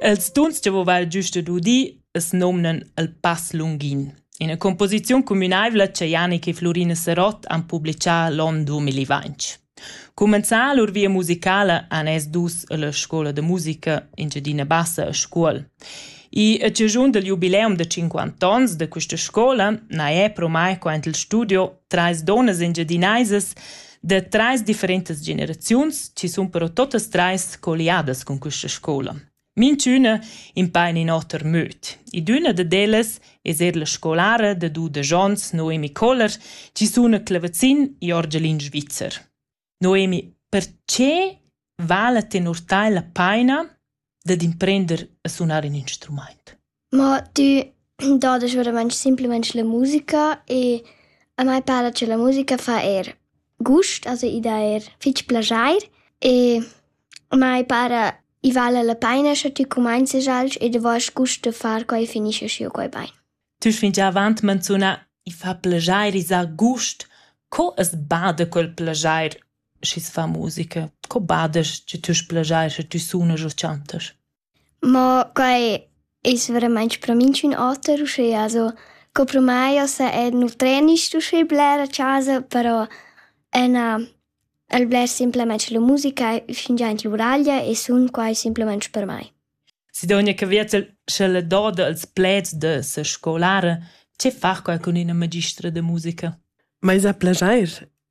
Els tuns che vova il giust ed udir es nomnan il Pass Lunghin, ina composiziun cumünaivla cha Janik e Flurina Serot han publichà l'on 2020. Cumenzà lur via musicala han es dus illa scoula da musica Engiadina Bassa a Scuol. I a cigiun del jubileum da 50 ans da questa scoula na è promai quant il studio trais donas engiadinaisas da trais differentas generaziuns ci sun però totas trais colliadas con questa scola. Minchüna in pa in in oter möd. Idüna dad ellas es er la scolara da du da Jons Noemi Koller, ci sun a Clevezzin e Orgelin Svizzer. Noemi, perche vala tenor tai la paina dad imprender a sunar in instrumaint. Ma tü dodas veramaing simplamaing la musica e a mai para cha la musica fa eir gust, also i dà eir fich plaschair e a mai para i vala la paina scha tü cumainzast alch ed avast gust da far quai e finischa schiu quai bain. Tü fingià avant manzunà i fa plaschair, i za gust. Co as bada quel plaschair schi's fa musica. Co badas che tü splagiais e tü sunas e chantas? Mo quai es veramaints pro minchün oter uschea, also co pro mai ossa è nu trenist uschè bler a chasa, però ena el bler simplamaing la musica fingià in l'uraglia e sun quai simplamaing per mai. Sidonja Caviezel, sch'ella doda als pleds da sa scolara, che far quai cun üna magistra da musica? M'ais a plagiair.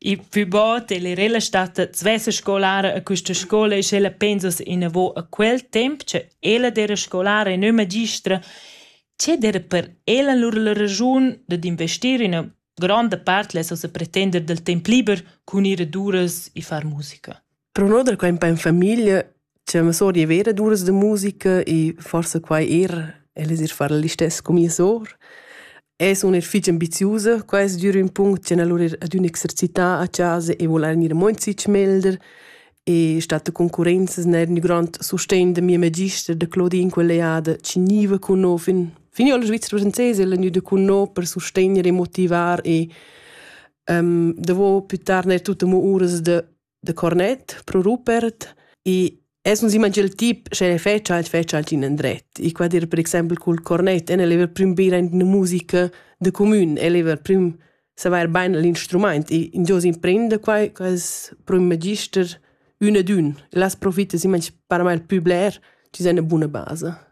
Il plü bod el era ella stada svessa scolara a quista scoula e sch'ella pensass inavo a quel temp cha ella d'eira scolara e non magistra, che d'eira per ella lur la raschun dad investir üna gronda part, less ossa pretender dal temp liber cun ir ad uras e far musica. Pro no da quai un po in famiglia c'è ma sora è vera d'uras da musica e forsa quai er ella es eir far l'istess co mia sora. Es una er fich ambiziusa, quai es dür ün punct ch'en alura er adüna exercità a chasa e voul eir gnir amunt fich melder e stat a concurrenzas n'eir ün grand sustegn da mia magister, da Claudine, quella eada, chi gniva cun no fin fin io la Svizra francesa ella gnüda cun no per sustegner e motivar e um, davo plü tard n'eir tut amo uras da de cornet pro Rupert e es non s'imagina il tip sche fece alt fece alt in endret i qua dir per exempel cul cornet en el prüm bira in una musica de comün el prüm saver bain l'instrumaint e in Dios imprende quai quas pro un magister ün ed ün las profitta si manch paramel pü bler ci seine buna base